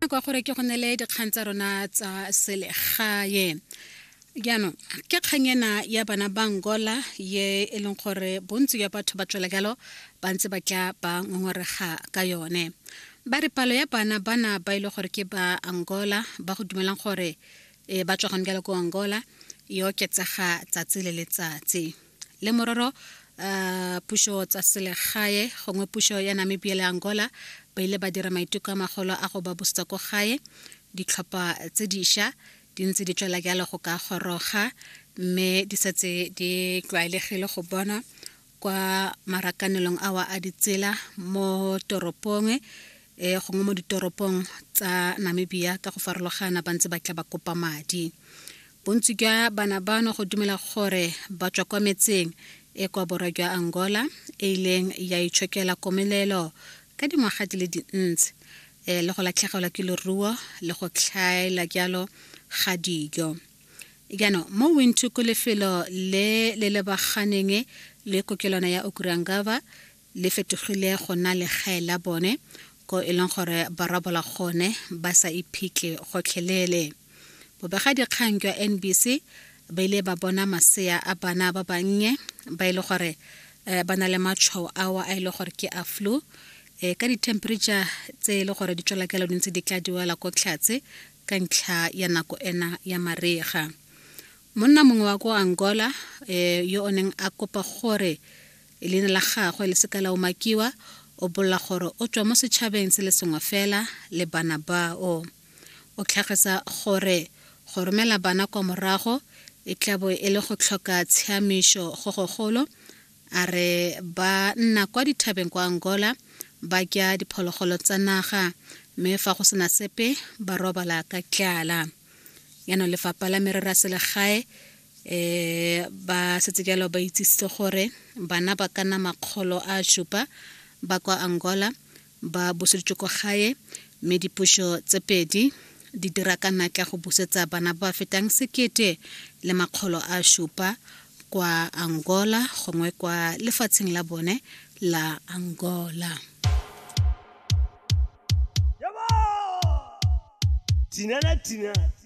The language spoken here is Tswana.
kwa gore ke go nele dikgang tsa rona tsa selegae jaanong ke kgang ena ya bana ba angola ye e leng gore bontsi ya batho ba tswela jalo ba ntse ba tla ba ngongorega ka yone ba re palo ya bana bana ba ile e gore ke ba angola ba go dumelang gore e, ba tswa gone jalo ko angola e oketsega tsatsi le letsatsi le mororo uh, pušo tsa selegae gongwe pušo ya namibia le angola ba ile ba dira maiteko a magolo a go ba busetsa ko gae ditlhopha tse diša di ntse di tswela jalo go ka goroga mme di setse di tlwaelegile go bonwa kwa marakanelong awa a ditsela mo toropong e eh, gongwe mo ditoropong tsa namibia ka go farologana ba ntse ba tla ba kopa madi bontsi jwa bana bano go dumela gore ba tswa kwa metseng e kwa borwa jwa angola e ileng ya itshokela komelelo ka dingwaga di le dintsi um le go latlhegelwa ke leruo le go tlhaela jalo ga dijo jaanong mo wintu ko lefelo le le lebaganeng le kokelwana ya okurangaba le fetogile go nna legae la bone ko e leng gore ba rabola gone ba sa iphitlhe gotlhelele bobegadikgang jwa nbc ba ile ba bona masea a bana ba bannye ba e le gore um ba na le matšhwao ao a e le gore ke a flu um ka di-temperature tse e le gore di tswela kelo dintse di tla diwela ko tlhatse ka ntlha ya nako ena ya marega monna mongwe wa ko angola um yo o neng a kopa gore e leina la gagwe le seka la umakiwa o bolela gore o tswa mo setšhabeng se le sengwe fela le bana bao o tlhagisa gore go romela bana kwa morago e tlabo e le go tlhoka tshiamišo go gogolo a re ba nna kwa dithabeng kwa angola ba kya diphologolo tsa naga mme fa go sena sepe ba robala ka tlala yano lefapha la merero ya selegae um ba setse jalo ba itsisitse gore bana ba ka nna makgolo a supa ba kwa angola ba buseditswe kwa gae mme dipuso tse pedi di dira ka natla go busetsa bana ba fetang sekete le makgolo a supa kwa angola gongwe kwa lefatsheng la bone la angola Tina la Tina.